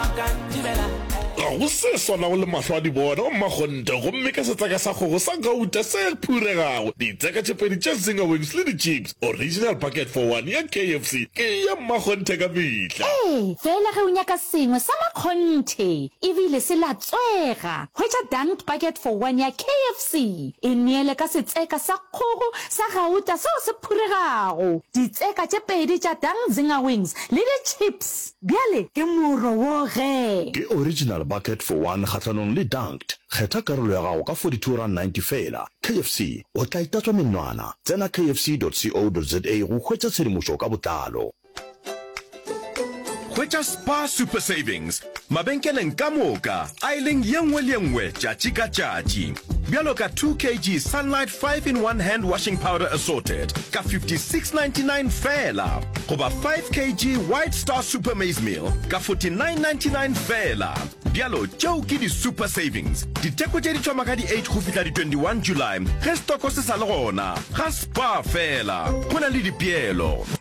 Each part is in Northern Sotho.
Ga go se swanago le mahlo a dibona wa mmakgonte gomme ka setseka sa kgogo sa gauta se phuregago, ditseka tše pedi tša zinger wings le di-chips, original bucket for one ya KFC ke ya mmakgonthe ka mehla. Ee, fela ge o nyaka sengwe sa makgonthe e bile se latswega, hwetša dunked bucket for one ya KFC. E neele ka setseka sa kgogo sa gauta seo se phuregago, ditseka tše pedi tša dunked zinger wings le di-chips. Bjale ke moro wo ge. Ke original bucket for one kgahlanong le dunked. Kgetha karolo ya gago ka 42 rand 90 feela. KFC, o tla itatswa menwana. Tsena kfc dot co dot za go hwetša tshedimošo ka botlalo. Hwetša Spar Super Savings mabenkeleng ka moka. a e leng ye nngwe le ye nngwe tšatši ka tšatši. Bjalo ka 2 kg Sunlight 5 in 1 Hand Washing Powder Assorted ka 56.99 feela goba 5 kg White Star Super Maize Meal ka 49.99 feela. Bjalo tšeo ke di-super savings. Ditheko tše di thoma ka di-8 go fihla di-21 July ge setoko se sa le gona. Ga Spar feela go na le dipeelo.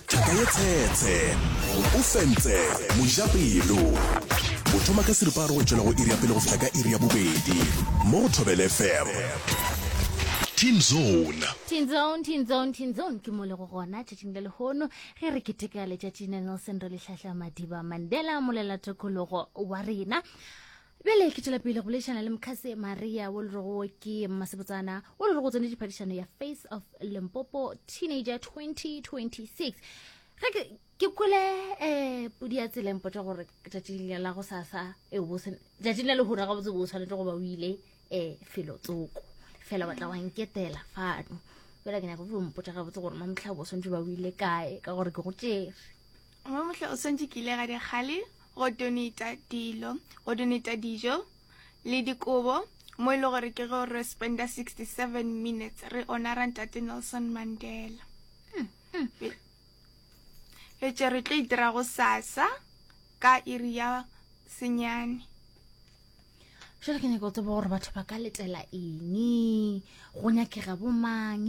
Thaka ye tshetshe. O fentse. Mojapelo. O thoma ka seripa a re go tšwela go iri ya pele go fihla ka iri ya bobedi. Mo go Thobele FM. Teen Zone. Teen Zone, Teen Zone, Teen Zone ke mo le go gona tšatšing le lehono ge re keteka letšatši la Nelson Rolihlahla Madiba Mandela, molelatokologo wa rena. bjale ke tšwela pele go leišana le mokgase maria wo le rego wo ke mmasebotsana wo le re go tsone diphadišano ya face of limpopo teenager 2026 ge ke ke kwele um podi ya tseleng potsa gore tšatšing le la go sasa tšatšing le lehura ga botse bo tshwanetse go ba o ile um felo tsoko fela batla wa nketela fano fela ke nyaka go mpotsa ga botse gore mamtlha bo swantse ba o ile kae ka gore ke go tšere Mo mohla o swantše ke ile ga di kgale go donata dilo, go donata dijo le dikobo mo e le gore ke go re spenda 67 minutes re onara ntate Nelson Mandela. Mm, mm. Fetše re tlo itira go sasa ka iri ya senyane. jale ke nyaka go tseba gore batho ba ka letela eng go nyakega bomang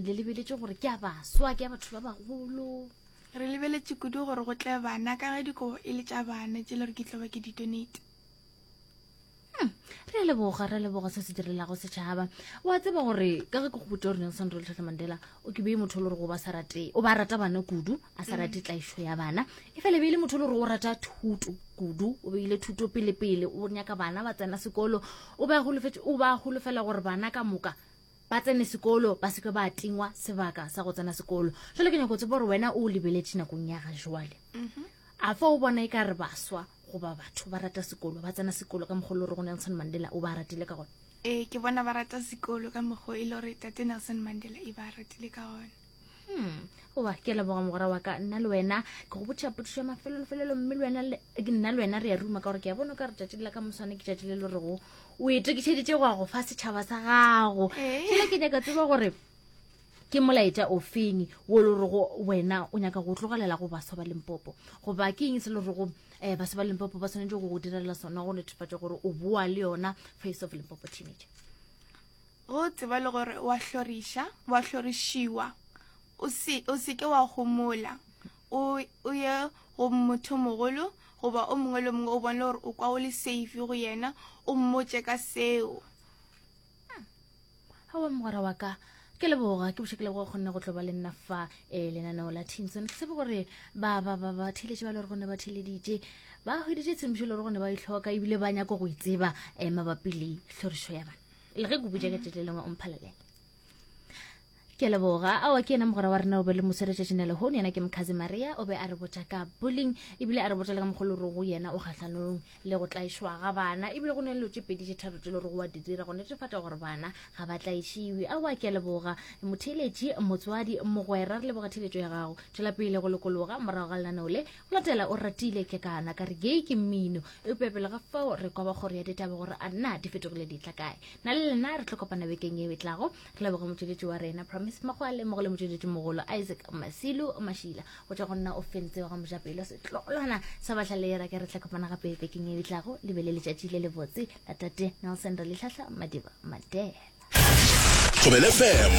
le lebeletše gore ke a baswa ke a batho ba bagolo Re lebeletše kudu gore go tle bana ka ge dikobo e le tša bana tše le re ke tlo ba ke ditonate. Hmm, re a leboga re a leboga se se direlago setšhaba wa tseba gore ka ge ke go botsa gore nelson rolitlhatlhe mandela o ke bee motho o le gore go ba sa rate o ba rata bana kudu a sa rate mm. tlaišo ya bana e fele beile motho o le gore o rata thuto kudu o beile thuto pelepele o nyaka bana ba tsena sekolo o ba golofela gore bana ka moka ba tsene sekolo ba seke ba tingwa sebaka sa go tsena sekolo jale ke nyako tsebo gore wena o lebeletše nakong ya ga jwale mhm. a fa o bona e ka re baswa goba batho ba rata sekolo ba tsena sekolo ka mogolo re go nelson mandela o ba ratile ka gone ee ke bona ba rata sekolo ka mokgwa e le gore tate nelson mandela e ba ratile ka gone hmm goba ke leboga mogora wa ka nna le wena ke go botšha potišo ya mafelolofelelo mme nna le wena re ya ruma ka gore ke ya bono ka re tšatši la ka moswane ke tšatši le le rego o e tokišeditše go ya go fa setšhaba sa gago fela eh. ke nyaka tseba gore ke molaetša ofeng wo le rego wena o nyaka go tlogelela go baswa ba lempopo goba ke eng se le rego um eh, baswa ba lempopo ba tshwanetse go go direlela sona go netefatša gore o boa le yona face of lempopo teenager O tseba le gore o a hloriša, o a hlorišiwa. O se, o se ke wa homola. O, o ye go mothomogolo goba o mongwe le mongwe o bone gore o kwa o le safe go yena, o mmotše ka seo. Awa mogwera wa ka ke leboga ke boša ke leboga kgonne go tlo ba le nna fa um lenaneo la tinson ke tsebe gore ba ba ba ba theletše ba le gore go ne ba theleditše ba hweditše tshemišo le gore go ne ba itlhoka ebile ba nyako go itseba um mabapi le tlhorišo ya bana le ge ke butša ka tšatši le lengwe o mphalelela ke leboga ao ke ena mogwera wa rena o be le moseretšatši ne lehono yena ke mokhazi maria o be a re botša ka bulling ebile a re botša le ka mogolo rogo yena o kgatlhanong le go tlaišwa ga bana ebile go ne le tše pedi tše tharo tse le gore wa di dira go netefatša gore bana ga ba tlaišiwe ao a ke leboga motheeletši motswadi mogwera re leboga theeletšo ya gago tšwela pele go lokologa morago ga lenaneo le Latela o ratile ke kana ka re gei ke mmino eupša pele ga fao re kwa ba kgoro ya ditaba gore a nna di fetogile di tla kae na le lena re tlo kopana bekeng e betlago re leboge motšweletši wa rena promise makgwale mmogo le motšweletši mogolo isaac masilu mašila go tša go nna o fentse wa ga mojapelo setlogolwana sa batlhalera ke re tla kopana gape bekeng e betlago le be le letšatši le lebotse la tate nelson re letlhahla madiba madela Thobele FM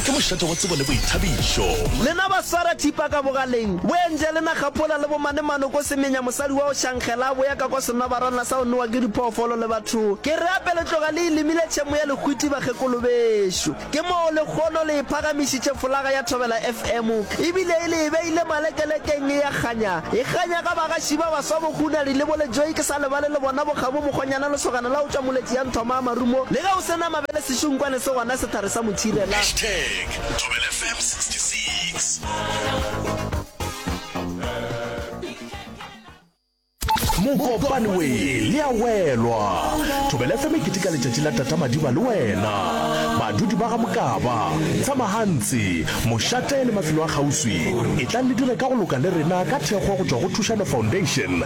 ke mošate wa tsebo le boithabišo. Lena ba swara thipa ka bogaleng, boentše lena kgaphola le bomanemano ko semenya mosadi wa go šangela a boya ka kwa senabarana sa go nowa ke diphoofolo le batho. Ke re ape le tloga le ilimile tšhemo ya lehwiti bakgekolo bešo. Ke moo lekgono le e phagamišitše folaga ya Thobela FM e bile e le e beile malekelekeng e ya kganya, e kganya ga bagaši ba baswa bo Kgunari le bo Lejoik. A lebale le bona bokgabo mokgonyana lesogana la go tšwa moletši ya nthoma a marumo le ge o se na mabele sešunkwane se gona sethari sa mothirela. Hashtag Thobela FM 66. Mokopane we le a welwa. Thobela FM e keteka letšatši la Tata Madiba le wena. Badudi ba ga Mokaba, Tsamahantsi, Mošate le mafelo a kgauswi etlang le dire ka go loka le rena ka thekgo go tšwa go Thušano Foundation